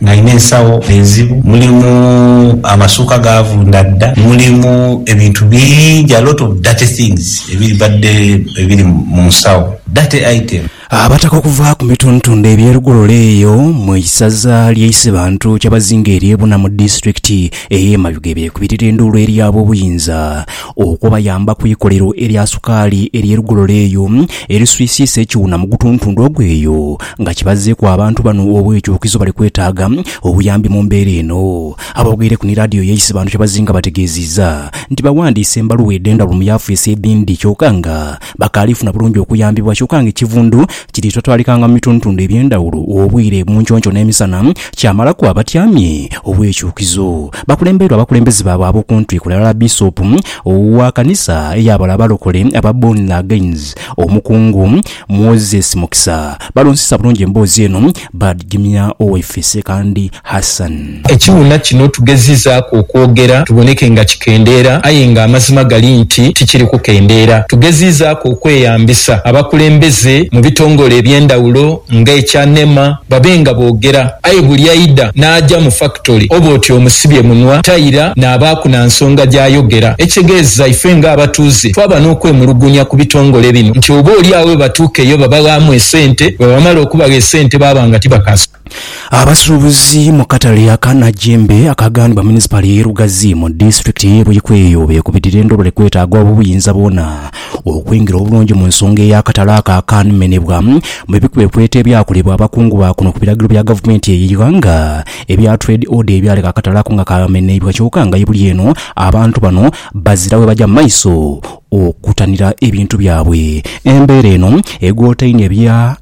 Nalina ensawo enzibu, mulimu amasuuka gaavunda dda, mulimu ebintu bingi, a lot of dirty things ebibadde ebiri mu nsawo, dirty item. Abataka okuva ku mitundtunda eby'e Lugololo eyo mu isaza ly'e Isebantu, Kyabazinga ery'e Buna mu disitulikiti ey'e Mayuge beekubirira enduulu eri ab'obuyinza okubayamba ku ikolero erya sukaali ery'e Lugololo eyo eriswisiisa ekiwuna mu gutuntundu ogwo eyo Nga kibazzeeku abantu bano obwekyukizo bali kwetaaga obuyambi mu mbeera eno. Aboogeireku ni laadiyo ya Isebantu kyebazinga bategeezizza nti bawandiise embaluwa edhenda buli mu yafeesi edhindi kyoka nga bakaali funa bulungi okuyambibwa kyoka nga ekivundu kiri totwalikanga mu bitundutundu ebyendhawulo obwire munconco n'emisana kyamalaku abatyamye obwekyukizo bakulembeirwa abakulembeze baabwe abokuntiko ghalala Bisopu wa kanisa eyabala abalokole aba Born Agains, Omukungu. Moses Mukisa balonzesa bulungi emboozi eno baadhigimya Owaife Ssekandi Hassan. Ekiwuna kino tugezizaaku okwogera tuboneke nga kikendeera aye nga amazima gali nti tikiri kukendeera. Tugezizaaku okweyambisa abakulembeze mu bitongole eby'endhawulo nga ekya nema, Babe nga boogera. Aye buli aidha n'aja mu fakitole oba oti omusibye munwa, taira naabaaku na nsonga gy'ayogera. Ekitegeeza ife ng'abatuuze twaba n'okwemulugunya ku bitongole bino nti oba oli agho bwe batuuka eyo babaghaamu esente, bwe bamala okubagha esente baaba nga tibakaasobola. Abasuubuzi mu katale aka Najjembe akaaghanibwa Munisipaali y'e Lugazi mu disitulikiti y'e Buikwe eyo beekubidira endobole kwetaaga obuyinza bwona Okwingira obulungi mu nsonga ey'akatale ako akaanumenebwa, mu bikwekweto ebyakolebwa abakungu ba kuno ku biragiro bya gavumenti eyo eighanga ebya Trade Order ebyaleka akatale ako nga kaameneibwa kyoka nga ye buli eno abantu bano bazira we baja mu maiso okutanira ebintu byabwe. Embeera eno egoota inho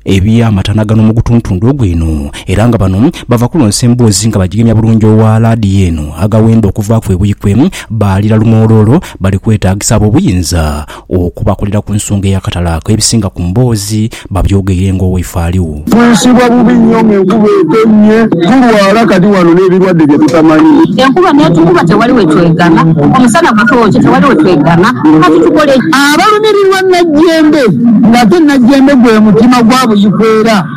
eby'amatana gano mu gutuntundu ogwo eno era nga bano bava kulonsa emboozi nga bagigemya bulungi owa laadiyo eno agawenda okuvaaku ebuikwe baalira lumooloolo Bali kwetaagisa ab'obuyinza okubakolera ku nsonga ey'akatale ako. Ebisinga ku mboozi babyogeire ng'oweifaaliu. Twisibwa bubi nnyo mu nkuba etonnye, tulwala kati wano n'ebirwadde bye tutamanyi. Enkuba n'etukuba tewali we twegama, omusana gutookye tewali we twegama. Kati tukole ki? Abalumirirwa nnajjembe, ng'ate nnajjembe gwe mutima gwa buyikwera.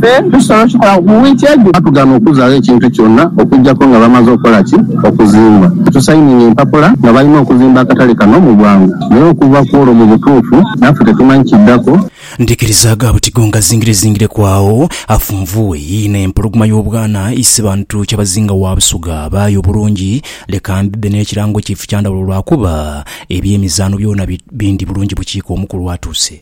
Ffe tusobola okikola mu wiiki edho. Baatugaana okuzaagho ekintu kyona okuggyako nga bamaze okukola ki? Okuzimba. Tusayininga empapula nga balina okuzimba akatale kano mu bwangu. Naye okuva ku olwo mu butuufu naffe tetumanyi kiddako. Ndikirizaaga buti gongazingirezingireku agho afunvuwe yii n'empologoma y'obwana Isebantu Kyabazinga wa Busoga abaayo obulungi. Leka mbibbe n'ekirango kye Ifukyandawulo lwakuba eby'emizaano byona bindi bulungi bukiika omukulu atuuse.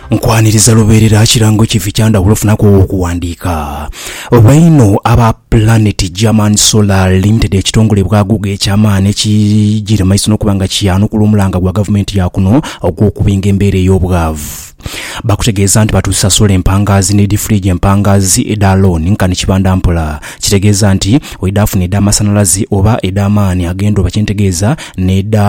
Nkwaniriza lubeerera kirango kifi kya ndhawulo ofunaku owo okuwandiika? Oba inho aba Planet German Solar Limited ekitongole bwaghuga eky'amaani ekijiire mu maiso n'okuba nga kiyanukula omulanga gwa gavumenti ya kuno ogw'okubinga embeera ey'obwavu bakutegeeza nti batuusa sola empangaazi ni difuriiji empangaazi edha looni nkani kibanda mpola kitegeeza nti oidhaafuna edh'amasanalaze oba edh'amaani ag'endhuba kyentegeeza n'edha